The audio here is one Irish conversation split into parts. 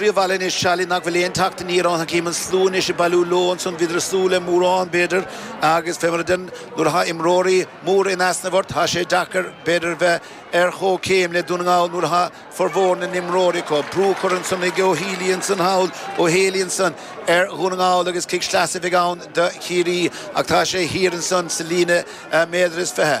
Rí-bhaol anois Charlie nach bhfuil aon teacht aniar ann. Chím an slua anois ag bailiú leo ansan, bhíodar ag súil le mórán, b'fhéidir, agus fé mar a deirim, nuair atá imreoirí móra in easnamh ort, tá sé deacair, b'fhéidir, bheith ar chomhchéim le Dún na nGall nuair atá formhór na n-imreoirí acu. Brú a chur ansan ag Ó Healy ansan thall, Ó Héalaí ansan, ar Dhún na nGall agus cic sleasa a bheidh ann do Chiarraí ach tá sé thiar ansan sa líne méadar is fiche.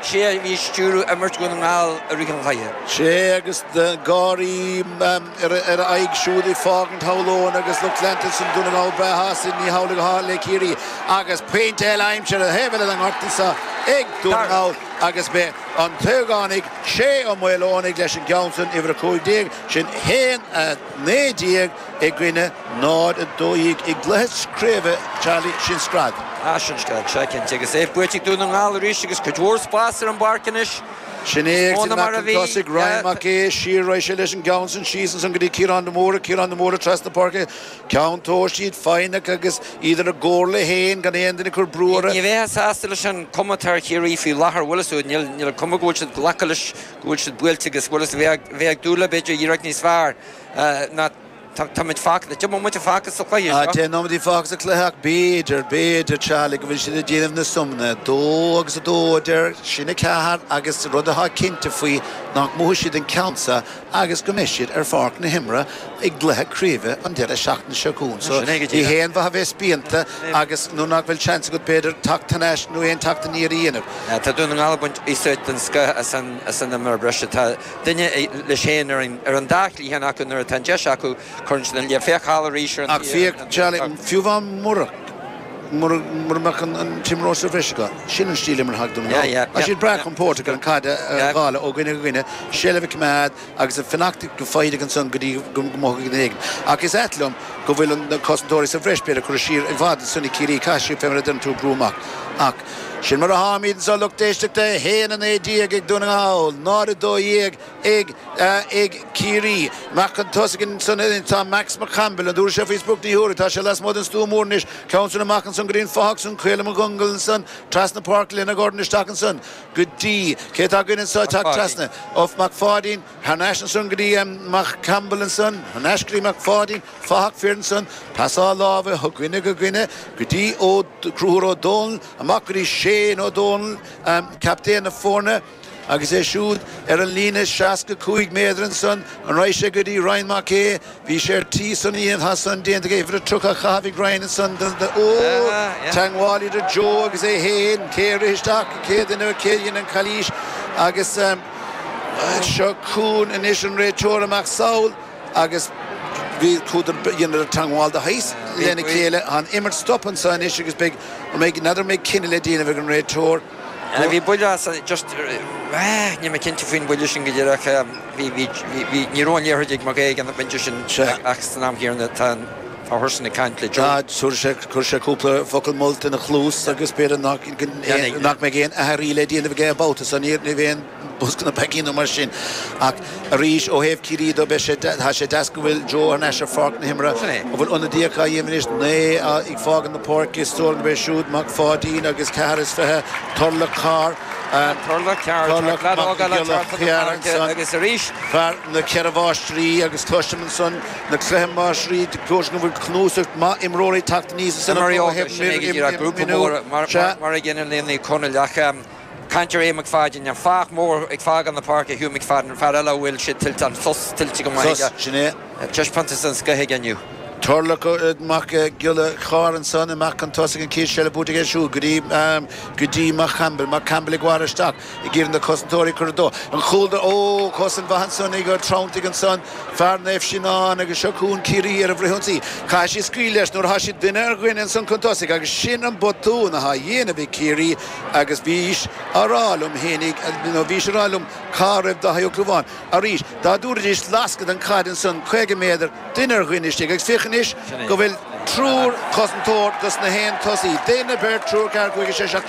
'Sé a bhí ag stiúradh imirt Dhún na nGall i rith an chluiche. 'Sé agus gáirí ar a aghaidh siúd ag fágaint Tholl Eoin agus lucht leanta Dún na nGall breá shásta. Ní hamhlaidh a tharla le Ciarraí agus pointe eile aimsithe ar thaobh eile na ngorta seo ag Dún na nGall agus b'é an t-ógánach Shay Ó Maoileonaigh leis an gceann san, uimhir 15, sin 1, 19 i gcoinne 0, 12 i gcluiche craoibhe Charlie, sin greadadh. Ah, sin greadadh seo, cinnte, agus é buailte ag Dún na nGall arís agus cuid mhór spáis ar an bpáirc anois. Sin é, ag teacht amach chun tosaigh, Ryan Mac Aodha, siar, raghaidh sé leis an gceann san síos ansan go dtí Ciarán de Mórdha, Ciarán de Mórdha trasna páirce, ceann tomhais, iad foighneach agus iad ar a gcomhairle féin, gan aon duine ag cur brú orthu. Ní bheifeá sásta leis an gcuma atá ar Chiarraí faoi láthair, a Mhuiris, óir níl an cuma go bhfuil siad ag glacadh leis go bhfuil siad buailte agus Muiris a bheith ag dúil le, b'fhéidir, iarracht níos fearr. Ná, táimid fágtha. Deich mbomaite fágtha sa chluiche seo. Tá deich nóiméidí fágtha sa chluiche ach b'fhéidir, b'fhéidir, Charlie, go bhfuil siad ag déanamh na suimeanna. Dó agus a dó, a deir, sin a ceathair agus an rud atá cinnte faoi nach mbuafaidh siad an ceann seo agus go mbeidh siad ar pháirc na himeartha i gcluiche craoibhe an deireadh seachtaine seo chugainn. So, ní haon mhaith a bheith spíonta agus nuair nach bhfuil seans agat, b'fhéidir, teacht thar n-ais nó aon teacht aniar a dhéanamh. Tá Dún na nGall ag baint úsáid den scoth as an imreoir breise. Tá. duine leis féin ar an dá chliathán acu nuair atá an deis acu, cuireann siad an liath. Féach thall arís ar an Ach féach Charlie, fiú amháin mura, mura, mura mbeadh an, an t-imreoir sa bhreis acu, sin an stíl imeartha atá ag Dún na nGall. Yeah, yeah, Tá yeah, siad breá yeah, compóirteach ar an understood. caid a a Yeah. dháileadh ó dhuine go dhuine, seilbh a choimeád agus a fanacht go foighdeach ansan go dtí go go mothóidh duine éigin. Ach is ait liom go bhfuil an na cosantóirí sa bhreis, b'fhéidir curtha siar i bhfad ansan ag Ciarraí, caithfidh siad fé mar a deireann tú, brú amach. Ach. Sin mar a tháimíd anso, a lucht éisteachta, 1:19 ag Dún na nGall, 0:12 ag Ciarraí. Amach chun tosaigh ansan anois tá Max Mac Caimbeul, an dtabharfaidh sé faoi sprioc? Ní thabharfaidh. Tá sé lasmuigh den stua mór anois, ceann soin amach ansan go dtí an fathach san, Caolán Mac Congail ansan trasna páirc lena dhorn isteach ansan go dtí, cé tá againn anso teacht trasna? Mac Pháidín. Thar n-ais ansan go dtí Max Campbell ansan, thar n-ais go dtí Mac Pháidín, fathach fir ansan, pasáil láimhe ó dhuine go dhuine go dtí Ó, Conchúr Ó Dónaill, amach go dtí Shane Ó Dónaill, captaen na foirne agus é siúd ar an líne 65 méadar ansan, an raghaidh sé, go dtí Ryan Mac Aodha, Bhí sé ar tí is anois tá san déanta aige uimhir a 30 á chaitheamh i gcrainn ansan den teagmháil idir Joe agus é féin, cé a rith isteach an chéad duine nó cé a dhein an chalaois agus seo chugainn anois an réiteoir amach sall agus bhí chuadar, dheineadar teagmháil de shaghas lena chéile, tá an imirt stoptha anseo anois agus beidh, an mbeidh, n'fheadar an mbeidh cinneadh le déanamh ag an réiteoir. Bhí buille as, just, níl mé cinnte faoin bhuille sin go díreach, bhí, bhí, bhí, ní raibh an liathróid ag McGuire ag an bpointe sin ach san am chéanna tá an, tá Hurson ag caint le Joe. Chuir sé, chuir sé cúpla focal molta ina chluas agus b'fhéidir nach, nach mbeidh aon athrú eile le déanamh aige an babhta seo, níor, níorbh aon, Bosca na bpeacaí nó mar sin. Ach arís, ó thaobh Ciarraí de, beidh sé, tá sé deas go bhfuil Joe thar n-ais ar Pháirc na hImeartha. Sin é. An bhfuil ionadaíocht á dhéanamh anois? Naoi ag fágaint na páirce, is dóigh liom go mbeidh siúd, Mac Pháidín agus ceathair is fiche, Turlough Carr, fear na gCeithre Máistrí agus cloisim ansan na Ceithre Máistrí go dúirt siad go bhfuil cnuasach maith imreoirí ag teacht aníos is ina chomhartha ag miniú. Sea. Mar a ghineann Liam Ní Chonaill, ach. Cainteoir, Aodh Mac Pháidín, An fathach mór ag fágáil na páirce, Hugh Mac Fadden, an fear eile a bhfuil siad tuillte, an sos tuillte go maith aige. Sos, sin é. Taispeántas den scoith aige inniu. Tarlach Mac Giolla Chárr ansan amach chun tosaigh, an chéad seilbh buaite aige siúd go dtí Max Campbell. Max Campbell ag gearradh isteach ag iarraidh na cosantóirí a chur i dtreo an chúil do. Ó! Cosaint mhaith ansan ag Ó Treanntaigh ansan, fear Naomh Seanán agus seo chugainn Ciarraí ar a bhfrithionsaí. Caithfidh siad scaoileadh leis nuair atá siad duine ar dhuine ansan chun tosaigh agus sin an botún atá á dhéanamh ag Ciarraí, Agus bhís a' rá liom fhéinig, nó bhís a' rá liom cá raibh Dáithí Ó Clúmháin. Arís, dá dtabharfaidís lascadh don chaid ansan, caoga méadar, duine ar dhuine istigh, agus féach anois go bhfuil triúr cosantóir dos na haon tosaí, duine, beirt, triúr, ceathair, cúigear, sé, seacht,